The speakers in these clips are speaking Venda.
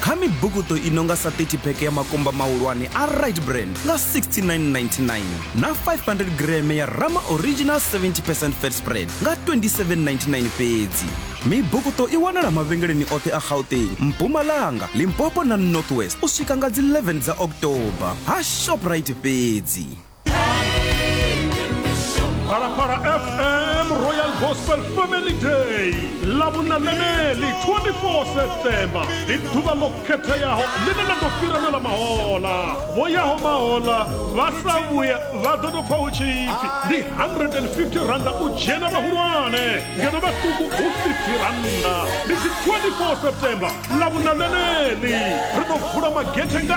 kha mibukuṱo i no nga sa 30 pheke ya makumba mahulwane a right brand nga 6999 na 500 greme ya rama original 70 percent fat spread nga 2799 fhedzi mibukuṱo i wanala mavhengeleni oṱhe a gauteng mpumalanga limpopo na northwest u swika nga dzi 11 dza october ha shoprite fhedzi Phalaphala FM Royal Gospel Family Day lavhunaneneli 24 septemba ndi ḓuvha ḽo khetheaho ḽine ḽa ḓo fhiranela mahola vho yaho mahola vha sa vhuya vha ḓo tou pfa hu tshipfi ndi 150 randa u dzhena vhahulwane ngeno vhaṱuku hu 50 randa ndi dzi 24 septemba lavhunaneneli ri ḓo vula magethe nga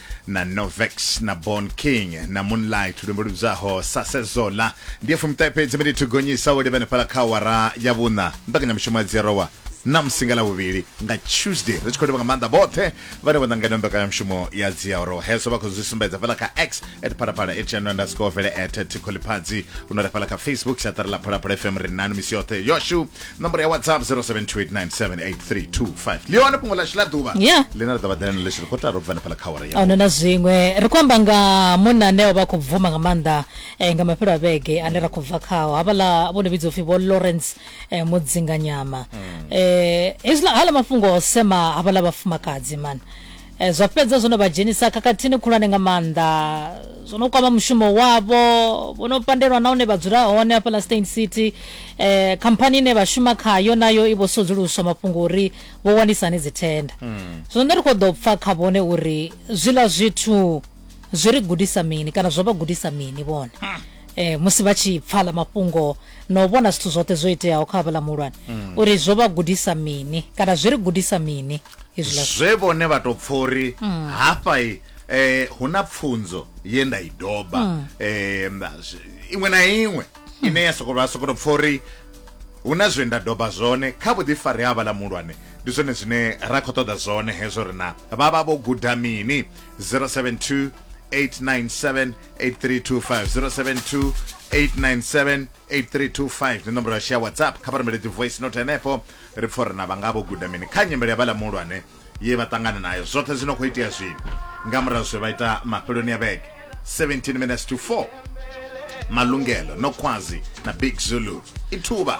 na novex na born king na moonlight luimbo lubzaho sa sezola ndiye fumitae fhedzi mbe ndithu gonyisa wo livhene fhala kha wara ya vhuṋa mbekanyamushumo ya dzirowa na musinga la vhuvhili nga tuesday ri tshi khou livha nga maanḓa vhoṱhe vhane vho ṋangana mbekanyamushumo ya dziarowa hezwo vha khou zwi sumbedza fhala kha x at phalaphala at channel underscore vele at tikholiphadzi u no ri fhala kha facebook siaṱari ḽa phalaphala fm ri nanu misi yoṱhe yoshu nomboro ya whatsapp 0728978325 ndi hone fhungo ḽashu ḽa ḓuvha Yeah. ḽine ḽa ḓo vha ḓela na ḽesho kotara u bva hanefhala kha awara ya ahuna na zwiṅwe ri khou amba nga munna ane o vha a khou bvuma nga maanḓa eh, nga mafhelo a vhege ane ra khou bva khao havhaḽa vho no vhidzwa upfhi vho lawrence eh, mudzinganyama um hezwiḽa hala mafhungo o sema havhaḽa vhafumakadzi mani Zwa fhedza zwo no vha dzhenisa khakhathini khulwane nga maanḓa. Zwo no kwama mushumo wavho, vho no pandelwa na hune vha dzula hone hafha ḽa Steyn City. Khamphani ine vha shuma khayo nayo i vho sudzuluswa mafhungo uri vho wanisa hani dzithenda. Zwino nṋe ri khou ḓo pfa kha vhone uri zwiḽa zwithu zwi ri gudisa mini kana zwo vha gudisa mini vhone musi vha tshi pfa aḽa mafhungo na u vhona zwithu zwoṱhe zwo iteaho kha havhaḽa muhulwane uri zwo vha gudisa mini kana zwi ri gudisa mini. zwe vhone vha to pfha uri mm. hafha i eh hu na pfunzo ye nda i doba mm. eh iṅwe na iṅwe mm. ine ya sokola sokoto pfha uri hu na zwe nda doba zwone kha vhuḓifari ha vhala mulwane ndi zwone zwine ra khou ṱoḓa zwone hezwo ri na vha vha vho guda mini 072 897 8325 072 897 8325 ndi nomboro ya share whatsapp kha vha rumele dzi voice note henefho Ri pfa uri na vha nga vho guda mini kha nyimele ya vhaḽa muhulwane ye vha ṱangana nayo. Zwoṱhe zwi no khou itea zwino nga murahu zwe vha ita mafheloni a vhege 17 minutes to 4 Malungelo, Nokhwazi na Big Zulu. I thuvha.